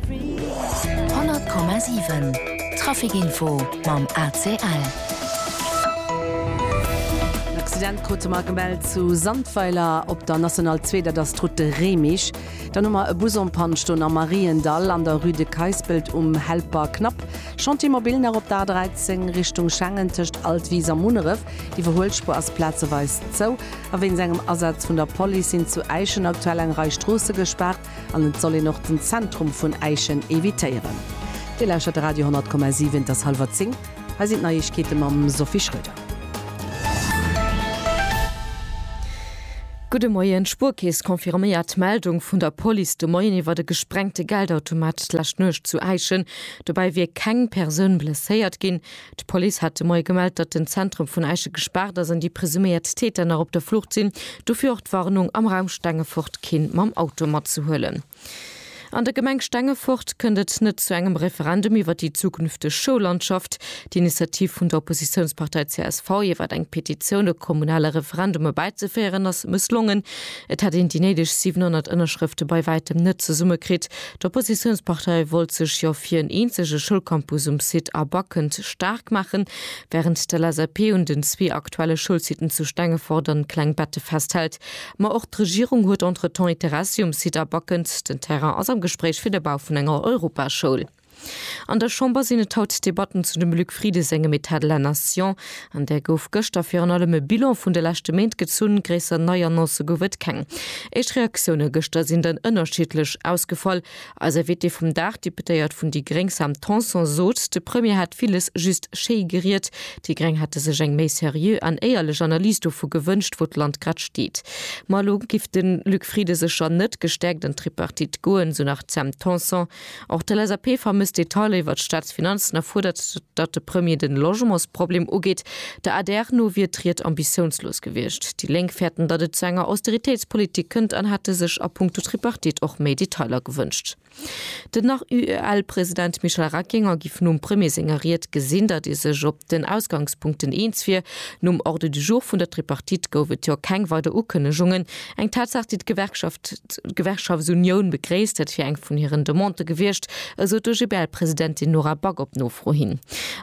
100,7 Trafikinfo mam ACL. En Accident krute mer gemellt zu Sandweiler op der National 2, dat ass d'Route de Réimech. Dann hu mer e Bus en Panne stoen am Mariendall an der Rue de Keispelt um Helper Knapp. Chantier mobil nach op der A13 Richtung Schengen tëscht Altwis a Munneref. D'Iwwerhuelspuer ass plazeweis zou a wéinst engem Asaz vun der Police sinn zu Äischen aktuell eng Rei Stroosse gespaart. An et soll een och den Zentrum vun Äischen evitéieren. Dir lauschtert de Radio 10,7, et ass hallwer 10, hei sinn d'Neiegkeete mam Sophie Schröder. Gudde Moien, D'Spuerkeess confirméiert d'Meldung vun der Police de Moien iwwert e gesprengte Geldautomat d'lescht Nuecht zu Äischen. Dobäi wier keng Persoun blesséiert ginn. D'Police hat de Moie gemellt, datt den Zentrum vun Äische gespaart ass an déi presuméiert Täter nach op der Flucht sinn. Dofir och d'Warnung, am Raum Stengefort keen mam Auto matzehuelen. An der Gemeng Stengefort kënnt et net zu engem Referendum iwwer déi zukünfteg Schoullandschaft. D'Initiativ vun der Oppositiounspartei csv, iwwer eng Petitioun e kommunale Referendum erbäizeféieren, ass mësslongen. Et hätt een déi néideg 700 Ënnerschrëfte bei wäitem net zesummekritt, D'Oppositiounspartei wollt sech jo fir en eenzege Schoulcampus um Site A Backend staark maachen, wärend d'LSAP un den zwee aktuelle Schoulsiten zu Stengefort an Klengbette festhält. Ma och d'Regierung huet entretemps Interessi um Site A Backend. Den Terrain ass am Gespréich fir de Bau vun enger Europaschoul. An der Chamber sinn et haut Debatten zu dem Luc Frieden sengem Etat de la Nation. An där gouf gëschter virun allem e Bilan vun de leschte Méint gezunn, gréisser nei Annoncë gouf et keng. Éischt Reaktioune gëschter sinn dann ënnerschiddlech ausgefall. Eis Invitée vum Dag, d'Deputéiert vun déi gréng Sam Tanson sot, de Premier hätt villes just schéi geriet. Déi gréng hätte sech eng méi seriö an éierlech Analys dovu gewënscht, wou d'Land grad steet. Ma elo giff de Luc Frieden sécher net gestäerkt an d'Tripartite goen, esou nach d'Sam Tanson. Och de LSAP vermësst Detailer iwwer d'Staatsfinanzen a fuerdert, datt de Premier de Logementsproblem ugeet. Der adr no wier d'Ried ambitiounslos gewiescht. Déi Lénk fäerten, datt et zu enger Austeritéitspolitik kënnt an hätte sech a punkto Tripartite och méi Detailer gewënscht. Den ARYL-President Michel Reckinger giff nom Premier senger Ried gesinn, datt ee sech op den Ausgangspunkten eens wier. Nom Ordre du jour vun der Tripartite gouf et jo keng weider Ukënnegungen. Eng Tatsaach, déi d'Gewerkschaft d'Gewerkschaftsunioun begréisst. Dat wier eng vun hiren Demandë gewiescht, esou d'OGBL-Presidentin Nora Back op Nofro hin.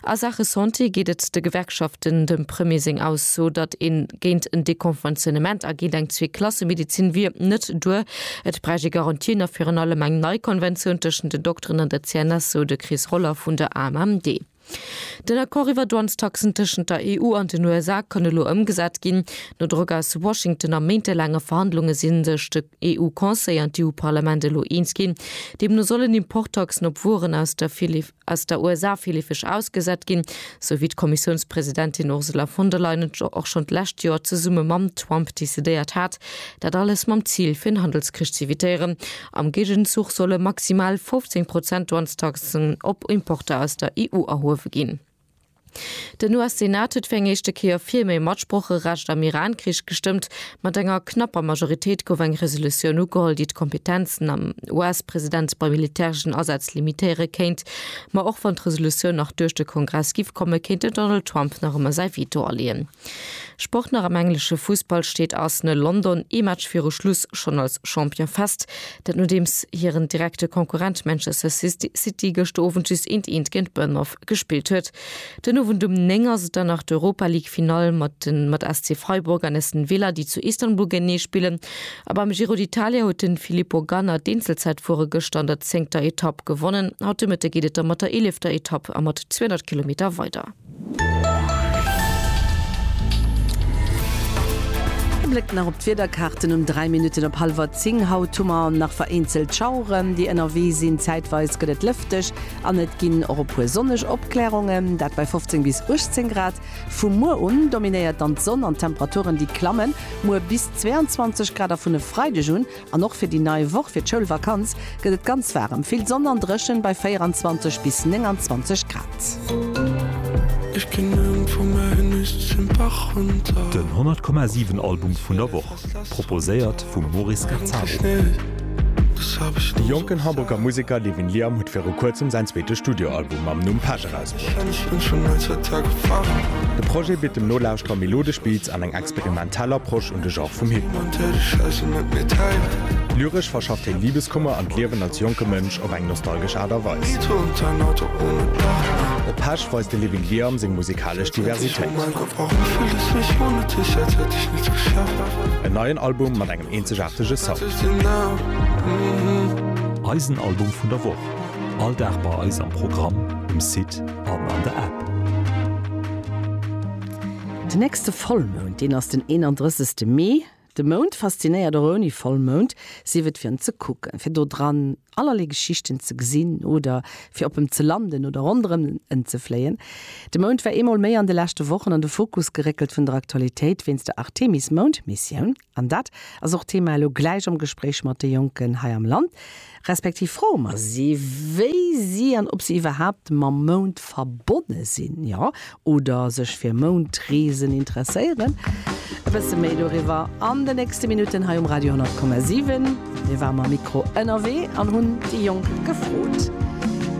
A Saache Santé geet et de Gewerkschaften, dem Premier seng Ausso, datt ee géint en Dekonventionnement a géint eng Zwee-Klasse-Medezin wier, net duer. Et bräicht ee Garantien a virun allem eng nei Konventioun tëschent den Dokteren an der CNS, sou de Chris Roller vun der AMMD. Den Accord iwwer Douanestaxen tëschent der EU an den USA kann elo ëmgesat ginn. No Drock aus Washington a méintelaange Verhandlunge si sech de EU-Conseil an d'EU-Parlament elo eens ginn. Deemno sollen Importtaxen op Wueren aus der aus der USA villefeg ausgesat ginn, sou wéi d'Kommissiounspresidentin Ursula von der Leyen et och schonn d'lescht Joer zesumme mam Trump decidéiert hat. Dat alles mam Zil, fir en Handelskrich z'evitéieren. Am Géigenzuch solle maximal 15 Prozent Douanestaxen op Importer aus der EU erhuewe ginn. Den US-Senat huet fir eng éischte Kéier fir méi Matsprocherecht am Iran-Krich gestëmmt. Mat enger knapper Majoritéit gouf eng Resolutioun ugeholl, déi d'Kompetenzen am US-President bei militäreschen Asätz limitéiere kéint. Ma och wann d'Resolutioun nach duerch de Kongress giff kommen, kéint den Donald Trump nach ëmmer säi Veto aleeën. Sport nach am englesche Fussball steet Arsenal London ee Match viru Schluss schonn als Champion fest. Dat nodeems hiren direkte Konkurrent Manchester City gëschter Owend just eent eent géint Bournemouth gespillt huet. Den Owend um 9 ass et dann nach d'Europa League Finall mat de mat SC Freiburg an Aston Villa déi zu Istanbul géintenee spillen. A beim Giro d'Italia huet de Filippo Ganna d'Eenzelzäitfuere gëschter an der zéngter Etapp gewonnen. Haut de Mëtte geet et da mat der eelefter Etapp a mat 200 Kilometer weider. E Bléck nach op d'Wiederkaarten um 3 Minutten op hallwer 10. Haut hu mer nach vereenzelt Schaueren, déi ënnerwee sinn. Zäitweis gëtt et lëfteg an et ginn och e puer sonneg Opklärungen, dat bei 15 bis 18 Grad. Vu muer un dominéiert dann d'Sonn an d'Temperaturen, déi klammen muer bis 22 Grad a vun e Freideg un An och fir déi nei Woch, fir d'Schoulvakanz, gëtt et ganz waarem, vill Sonn an dréchen bei 24 bis 29 Grad. Den 100,7 Album vun der Woch, proposéiert vum Maurice Gazzaro. De jonken Hamburger Museker Levin Liam huet viru kuerzem säin zweete Studioalbum mam Numm Passion. Präis krut. De Projet bitt dem Nolauschterer melodesch Beats an eng experimentell Approche un de Genre vum Hip-Hop. Lyresch verschafft hien Libeskummer an d'Liewen als jonke Mënsch op eng nostalgesch Aart a Weis. Op Pesch weist de Living Liam seng musikalesch Diversitéit. En neien Album mat engem eenzegaartege Sound. Eisen Album vun der Woch. All Dag bei eis am Programm, um Site an an der App. Den nächste Vollmound, deen ass den 31 Mee. De Mound faszinéiert och ouni Vollmound, sief et fir en ze kucken, fir do dran allerlee Geschichten ze gesinn oder fir op em ze landen oder ronderëm en ze fléien. De Mound war eemol méi an de leschte Wochen an de Fokus geréckelt vun der Aktualitéit wéinst der Artemis-Moundmissioun. An dat ass och d'Thema elo gläich am Gespréich mat de Jonken hei am Land, respektiv froe mer si, wéi si an ob si iwwerhaapt mam Mound verbonne sinn, jo, oder sech fir Moundreesen interesséieren. E bësse méi doriwwer an den nächste Minutten hei um Radio 10,7. Mir ware mam Mikro ënnerwee an hunn déi Jonk gefrot.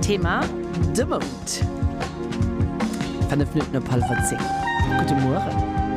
Thema, de Mound. Fënnef Minutten op hallwer zéng. Gudde Mueren.